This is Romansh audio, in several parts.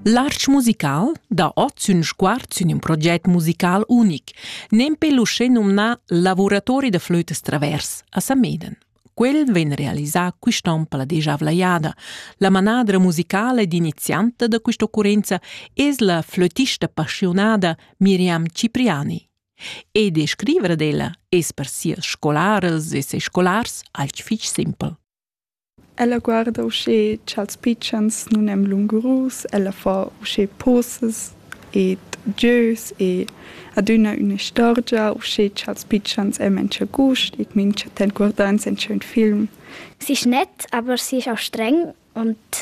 L'arch musical dà ot sün sguard sün ün proget musical unic, nempe l'uschè nomnà Lavuratori da flötas travers a Sameden. Quel vegn realisà quist'on per la dejavla jada. La manadra musicala ed inizianta da quest'occurrenza es la flötista passionada Miriam Cipriani. E de scrivere d'ella es per sias scolarels e ses scolars alch fich simpel. Ella guarda uschè cha'ls pitschens nun èn lungurus, ella fa uschè posas ed gieus e adüna ün'istorgia uschè cha'ls pitschens ean mincha gust e mincha temp guardans inchün film. S'is gnit aber sieu stregn und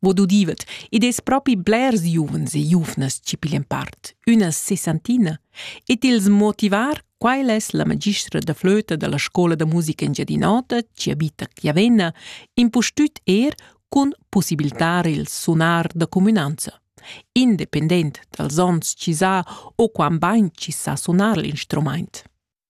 Bod udivet, id es propi blers giuvens e giuvnas chi piglian part, üna sessantina, e t'ils motivar, quai es la magistra da flöta da la scoula da musica Engiadin'Ota chi abita a Chiavenna, impustüt eir cun pussibiltar il sunar da cumünanza. Independent dals ons chi s'ha o quant bain chi sa sunar l'instrumaint.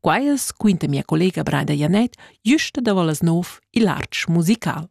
Quai es, quinta mia collega Brada Janett, güsta davo las nouv il artsch musical.